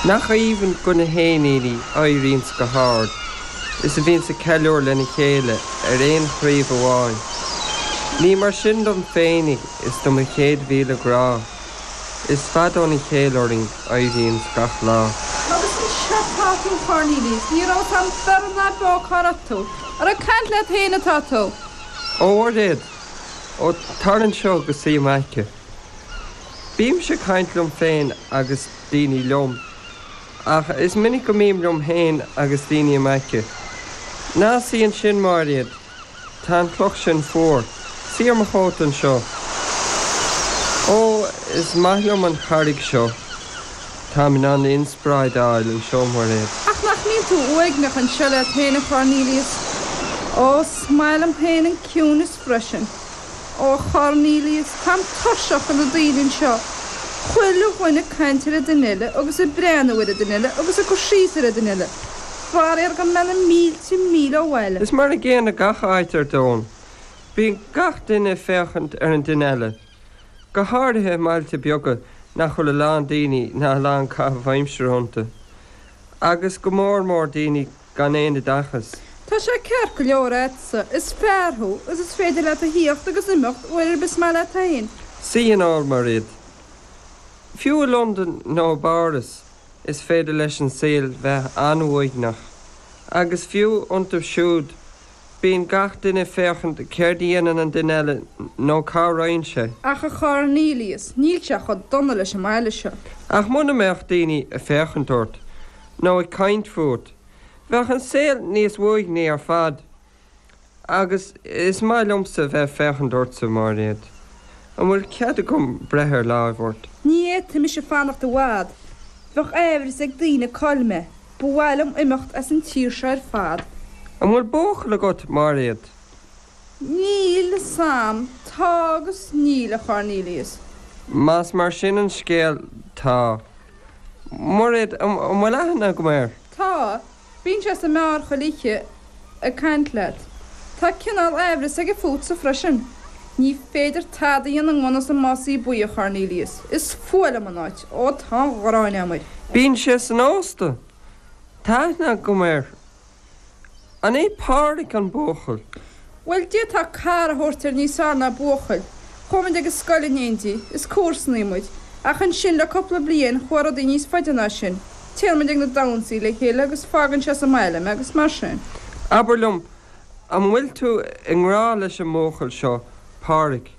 Nach aoibhinn do na héiníní a éiríonns go hard is a bhíonns ag ceiliúr lena chéile ar aon chraoibh amháin. Ní mar sin dom féinig is do mo chéad mhíle grá, is fada óna chéile orainn a éiríonns gach lá. Agus anseo atá tú Cornelius, ní raibh fhios a'm beirthe ná beo cá raibh tú, ar ag caint leat féin atá tú. Ó Mhairéad, ó tar anseo agus suigh i m'aice. Bímse ag caint liom féin agus daoine liom, ach is minic go mbím liom féin agus daoine i m'aice. Ná suigh ansin, Mairéad, tá an chloch sin fuar. Suigh ar mo chóta anseo. Ó, is maith liom an charraig seo. Táim in ann inspioráid a fháil anseo, Mairéad. Ach nach mbíonn tú uaigneach anseo leat féin, a Chornelius? Ó, is maith liom féin an ciúnas freisin. Ó a Chornelius, táim tuirseach de na daoine anseo, chuile dhuine ag caint ar an duine eile agus ag breathnú ar an duine eile agus ag cur síos ar an duine eile, faraor gan mé na mílte míle ó bhaile. Is mar an gcéanna gach áit ar domhan, bíonn gach duine ag féachaint ar an duine eile, go háirithe i mbailte beaga nach bhfuil a lán daoine ná a lán caitheamh aimsire iontu, agus go mór mór daoine gan aon oideachas. Tá sé ceart go leor a'dsa, is fear thú, is is féidir leat a thíocht agus imeacht uair ar bith is maith leat fhéin. Sea, ar ndóigh, Mairéad. Fiú i Londain nó i bPáras is féidir leis an saol bheith an-uaigneach. Agus fiú iontu siúd, bíonn gach duine ag féachaint céard a dhéanann an duine eile nó cá raghainn sé. Ach a Chornelius, níl sé chomh dona leis an mbaile seo. Ach muna mbeadh daoine ag féachaint ort, nó ag caint fút, bheadh an saol níos uaigní ar fad. Agus is maith liomsa a bheith ag féachaint ortsa, Mairéad. An bhfuil cead agam breith ar láimh ort? Ní fhéadfaidh mise fanacht i bhfad. Bheadh aimhreas ag daoine cá'il mé. Ba mhaith liom imeacht as an tír seo ar fad. An bhfuil buachaill agat, Mairéad? Níl fhios a'm, tá agus níl, a Chornelius. Más mar sin an scéal, tá. Mairéad, an bhfuil aithne agam air? Tá. Bíonn sé sa mbeár chuile oíche ag caint leat. Tá cineál aimhreas aige fútsa freisin. Ní féidir tada a dhéanamh i ngan fhios an másaí buí, a Chornelius. Is fuath liom an áit. Ó, tá an ghráin a'm air. Bíonn sé san ósta. Tá aithne agam air. An é Pádhraic an buachaill? Bhuel, d'fhéadfá cara a thabhairt air níos fearr ná buachaill. Chuaigh muid ag an scoil in éindí, is comharsanaí muid. Ach ansin, le cúpla bliain, chuaigh rudaí níos faide ná sin. Téann muid ag na damhsaí le chéile agus fágann sé sa mbaile mé agus mar sin. Abair liom, an bhfuil tú i ngrá leis an mbuachaill seo, Pádhraic?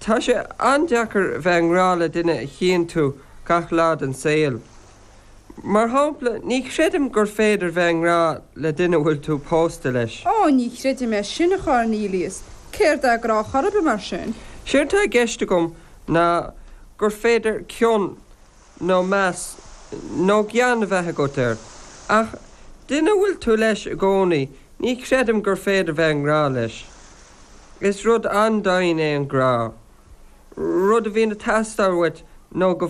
Tá sé an-deacair bheith i ngrá le duine a chíonn tú gach lá den saol. Mar shampla, ní chreidim gur féidir bheith i ngrá le duine a bhfuil tú pósta leis. Ó, ní chreidim é sin, a Chornelius. Céard é grá chor ar bith, mar sin? Séard tá i gceist agam ná gur féidir cion nó meas nó gean a bheith agat air, ach duine a bhfuil tú leis i gcónaí, ní chreidim gur féidir bheith i ngrá leis. Is rud an-daingean é an grá, rud a bhíonn ag teastáil uait nó go.